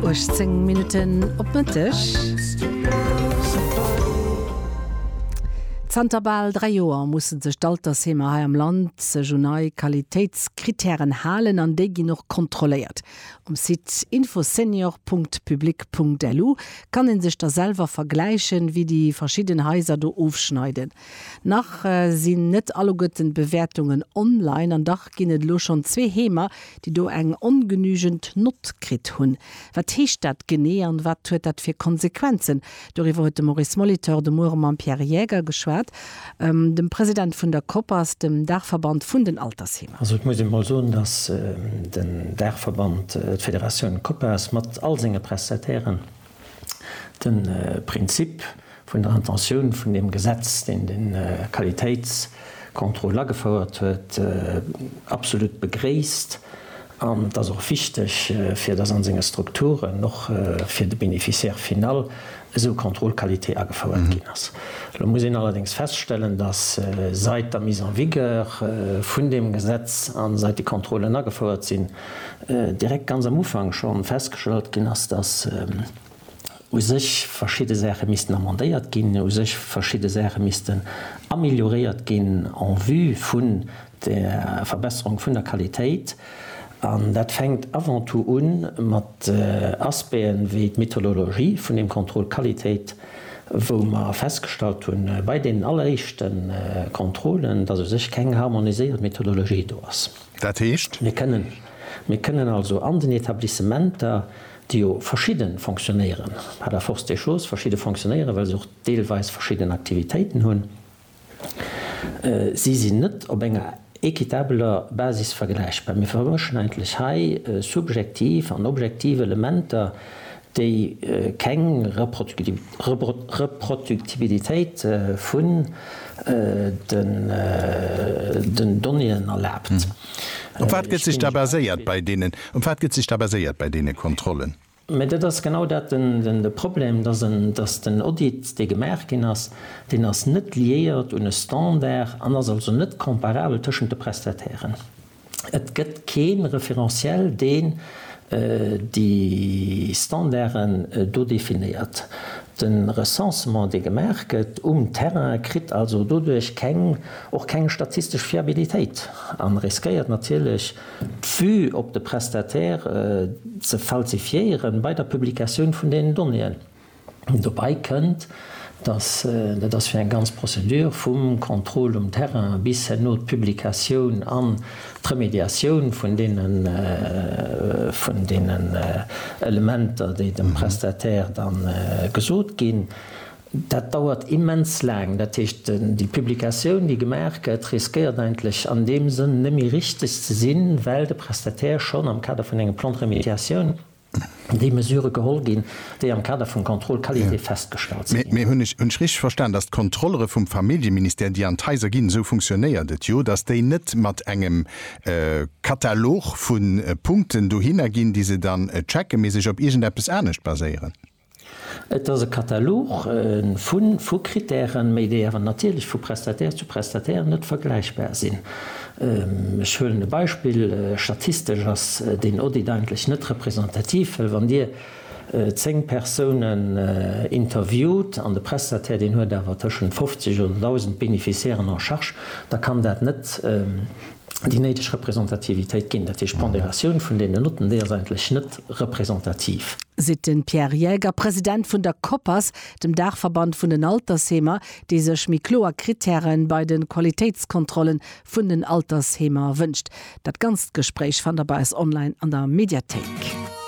18 Minutten op Mëtteg. Zanter bal dräi Joer musse sech d'Altersheemer hei am Land sech un nei Qualitéitskrittären halen an déi ginn och kontrolléiert. Um Site infosenior.public.lu kann ee sech da selwer vergläichen, wéi déi verschidden Haiser do ofschneiden. Nach sinn net alleguerten d'Bewäertungen online an dach ginn et elo schonn zwee Heemer, déi do eng ongenügend Nott kritt hunn. Wat heescht dat genee an wat huet dat fir Konsequenzen? Doriwwer huet de Maurice Molitor de Muere mam Pierre Jäger geschwat, dem President vun der Koppers, dem Daachverband vun den Altersheemer. Also et muss een emol soen, datt den Daachverband, d'Federatioun Koppers mat all senge Prestatairen, De Prinzip vun der Intentioun vun deem Gesetz, deen de Qualitéitscontrôle agefouert huet, absolut begréisst. An et ass och wichteg, fir dass an senge Strukturen och fir de Bénéficiaire final esou Contrôle qualité agefouert ginn ass. Elo muss een allerdéngs feststellen, dass seit der Mise en vigueur vun deem Gesetz a seit déi Contrôlen agefouert sinn, direkt ganz am Ufank schonn festgestallt ginn ass, dass u sech verschidde Saache missten amendéiert ginn, u sech verschidde Saache missten amélioréiert ginn en vue vun der Verbesserung vun der Qualitéit. An dat fänkt avant tout u mat Aspecten wéi d'Methodologie vun deem Contrôle Qualitéit, wou mer festgestallt hu bei deenen alleréischte Contrôlen, dass u sech keng harmoniséiert Methodologie do ass. Dat heescht? Mir kënnen, mir kënnen also an den Etablissementer, déi jo verschidde fonctionnéiere par la force des choses, verschidde fonctionnéiere well se och deelweis verschidden Aktivitéiten hunn, si sinn net op enger équitabeler Basis vergläichbar. Mir vermëschen eigentlech hei subjektiv an objektiv Elementer, déi keng Reproduktibilitéit vun den Donnéeën erlaabt. Op wat gëtt sech da baséiert bei deenen, op wat gëtt sech da baséiert bei deene Kontrollen? Mä dat ass genau dat de Problem, dass den Audit, dee gemaach ginn ass, deen ass net liéiert un e Standard an ass also net comparabel tëschent de Prestatairen. Et gëtt kee Referentiel, deen déi Standarden do definéiert. De Recensement, dee gemaach gëtt um Terrain, kritt also doduerch keng, och keng statistesch Fiabilitéit a riskéiert natierlech, d'Vue op de Prestataire ze falsifiéieren bei der Publikatioun vun deenen Donnéeën. Dobei kënnt, dass, dat ass fir eng ganz Procédure, vum Contrôle um Terrain bis herno d'Publikatioun an d'Remédiatioun vun deene vun deenen Elementer, déi dem Prestataire da gesot ginn, dat dauert immens laang. Dat heescht, déi Publikatioun, déi gemaach gëtt, riskéiert eigentlech an deem Sënn net méi richtig ze sinn, well de Prestataire schonn am Kader vun engem Plan de remédiation, déi Mesurë geholl ginn, déi am Kader vum Contrôle qualité festgestallt si ginn. Mee hunn ech richteg verstan, datt d'Kontrollere vum Familljeministère, déi an d'Haiser ginn, esou funktionéiert et jo, datt déi net mat engem Katalog vu Punkten dohinner ginn, déi se dann checken, mee sech op iergendeppes anescht baséieren? Et ass e Katalog vu vu Krittären, méi déi awer natierlech vu Prestataire zu Prestataire net vergläichbar sinn. Ech huelen e Beispill, Statistesch ass deen Audit eigentlech net representativ, well wann Dir 10 Persounen interviewt an de Prestataire deen huet awer tëschent 50 oder 1.000 Bénéficiairen en charge, da kann dat net, déi néideg Representativitéit ginn. Dat heescht, d'Ponderatioun vun deenen Notten, déi ass eigentlech net representativ. Seet de Pierre Jaeger, President vun der Koppers, dem Daachverband vun den Altersheemer, dee sech méi kloer Krittäre bei de Qualitéitskontrolle vun den Altersheemer wënscht. Dat ganzt Gespréich fannt der bei eis online an der Mediathéik.